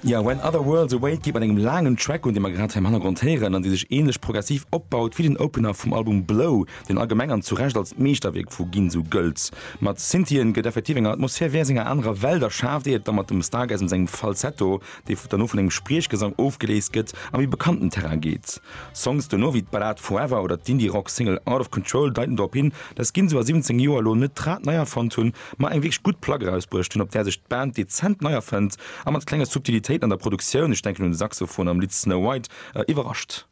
Jo, When Other Worlds Await geet mat engem laangen Track un, dee mer grad hei am Hannergrond héieren an dee sech ähnlech progressiv opbaut wéi den Opener vum Album Blow, deen allgemeng an zu Recht als Meeschterwierk vu Ginsu gëllt. Mat Synthien gëtt effektiv eng Atmosphär wéi aus enger anerer Welt erschaaft, ier et da mat dem Stargasm sengem Falsetto, dee derno vun engem Spriechgesang ofgeléist gëtt, a méi bekannten Terrain geet. Songs duerno wéi d'Ballad Forever oder d'Indie-Rock-Single Out Of Control deiten drop hin, dass Ginsu a 17 Joer elo net d'Rad nei erfonnt hunn, ma eng wierklech gutt Plack erausbruecht hunn, op där sech d'Band dezent nei erfënnt a mat klenge Subtilitéiten an der Produktioun, ech denken un de Saxophon am Lidd Snow White, iwwerrascht.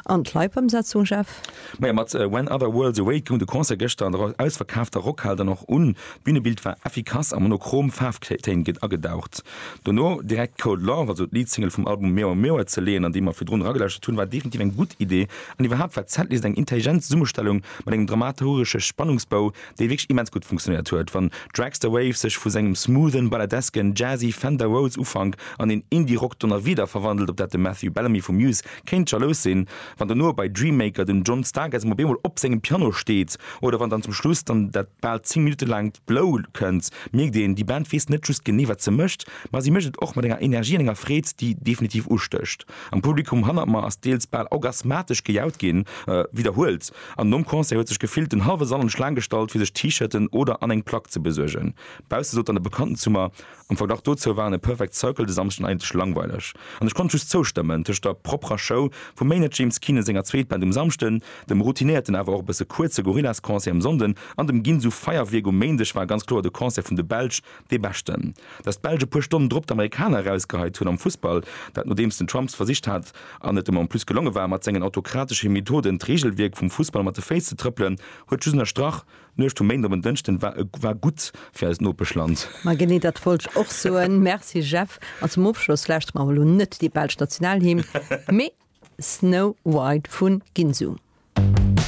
An d'Live-Ëmsetzung, Jeff? Majo, mat When Other Worlds Awake goung de Concert gëschter an der ausverkaafter Rockhal dann och un. D'Bünebild war effikass a monochrom Faarftéin agedaucht. Dono direkt Cold Love, also d'Lead-Single vum Album Meow Meow, ze leeën, an déi mer virdrun eragelauschtert hunn, war definitiv eng gutt Idee. An iwwerhaapt war d'Setlist eng intelligent Zesummestellung mat engem dramaturgesche Spannungsbou, dee wierklech immens gutt funktionéiert huet, wann Dragster Wave sech vu sengem smoothen, balladesken, jazzy Fender Rhodes Ufank an een Indie-Rock Donnerwieder verwandelt, op dat de Matthew Bellamy vu Muse kéint jalous sinn, wann dono bei Dream Maker den John Stargazzum op eemol op sengem Piano steet oder wann dann zum Schluss dann dat bal 10 Minutte laangt Blow kënnt, mierkt een, déi Band weess net just genee, wat se mécht, ma si mécht et och mat enger Energie an enger Freed, déi definitiv ustécht. Am Publikum hannert mer ass deels bal orgasmatesch gejaut ginn, widderhuelt. An nom Concert huet sech gefillt den hallwe Sall an d'Schlaang gestallt fir sech T-Shirten oder an eng Plack ze besuergen. Bausse sot dann e Bekannten zu mer, am Verglach dozou waren e Perfect Circle de Samschden eigentlech langweileg. An ech konnt just zoustëmmen, tëscht der propperer Show vum Maynard James Keenan senger Zweetband um Samschden, dem routinéierten awer och e bësse kuerze Gorillaz Concert um Sonnden an dem Ginsu Feierwierk um Méindeg war ganz kloer de Concert vun de Belsch Dee beschten, datt d'Belsch e puer Stonnen drop d'Amerikaner erausgeheit hunn am Fussball, dat nodeems den Trump s'versicht hat, an et em en plus gelonge war, mat sengen autokratesche Methoden d'Reegelwierk vum Fussball mat de Féiss ze trëppelen, huet just ënnerstrach, D'Nuecht vum Méinden op en Dënschden war e war gutt fir eist Nopeschland. Ma genee dat wollt ech och soen. Merci Jeff. An zum Ofschloss lauschtere mer emol elo net déi belsch Nationalhymn, mee Snow White vun Ginsu.